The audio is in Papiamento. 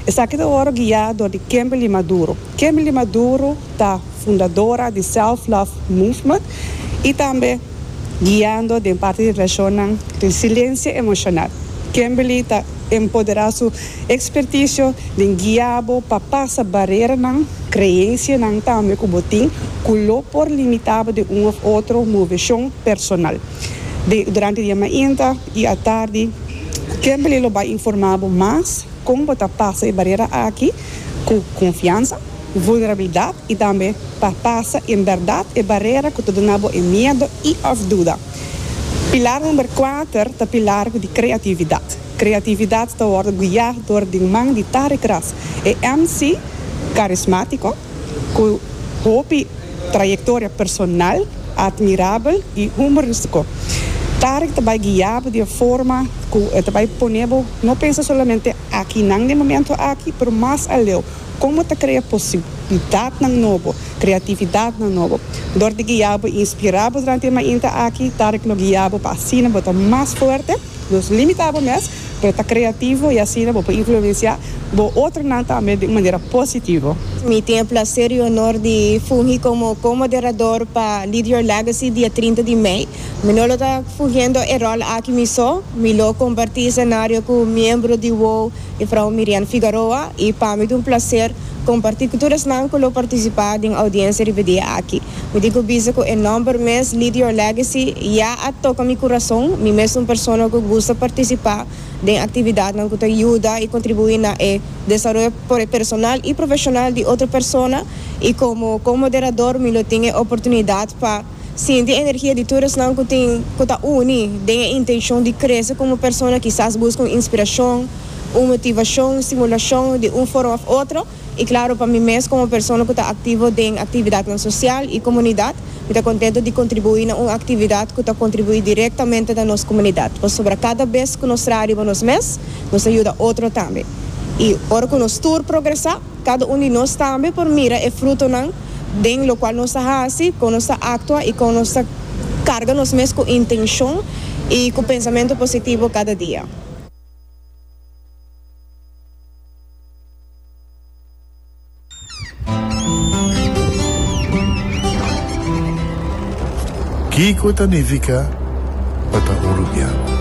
Esaki ta ora guia dor di Kimberly Maduro. Kimberly Maduro ta fundadora di Self Love Movement y tambe guiando den parti di relacionnan Resiliencia Emocional. Kimberly ta empodera su experticio den guia bo pa pasa bareranan, creencianan tambe cu bo tin cu lo por limita bo den un of otro movecion personal. Den, durante di e mainta y atardi Kimberly lo bay informa bo mas. Kon bo ta pasa e barera aki ku konfiansa, vulnerabilidat i tambe pa pasa en bèrdat e barera ku ta duna bo e miedu i òf duda? Pilar number kuater ta pilar di kreatividat. Kreatividat ta wòrdu guiá dor di un man di Tarek Ras, e MC karismátiko ku hopi Trayectoria personal admirabel y humoristico. Tarek ta bay guiabo di e forma cu e ta bay ponebo no pensa solamente akinan den momento aki pero mas aleo como ta crea posibilidadnan nobo, creatividadnan nobo. Door di guiabo y inspirabo durante e mainta aki, Tarek lo guiabo pa asina bo ta mas fuerte, nos limitabo mes Pero ta creativo y asina bo por influencia bo otronan tambe di un manera positivo. Mi tin e placer y honor di fungi como co-moderador pa Lead Your Legacy dia trinta di mei. Mi no lo ta fungiendo e rol aki mi so, mi lo comparti escenario cu miembro di wou, Mevrouw Mirian Figaroa, y pa mi ta un placer. Comparti cu tur esnan cu lo participa den audiencia riba dia aki. Mi di cu bisa cu e nomber mes Lead Your Legacy ya a toca mi curazon. Mi mes un persona cu gusta participa den actividadnan cu ta yuda y contribui na e desaroyo personal y profesional di otro persona y como co-moderador mi lo tin e oportunidad pa Sinti energia di tur esnan ku tin ku ta uni den e intenshon di krese komo persona kisas buska un inspirashon, un motivashon, stimulashon di un forma òf otro i klaro pa mi mes komo persona ku ta aktivo den aktividatnan sosial i komunidat mi ta kontentu di kontribuí na un aktividat ku ta kontribuí direktamente na nos komunidat pasobra kada bes ku nos traha riba nos mes nos ta yuda otro tambe i ora ku nos tur progresá. Cada un di nos tambe por mira e frutonan den locual nos ta haci, con nos ta actua y con nos ta carga nos mes cu intencion y cu pensamento positivo cada dia. Kico ta nifica pa ta un rubian?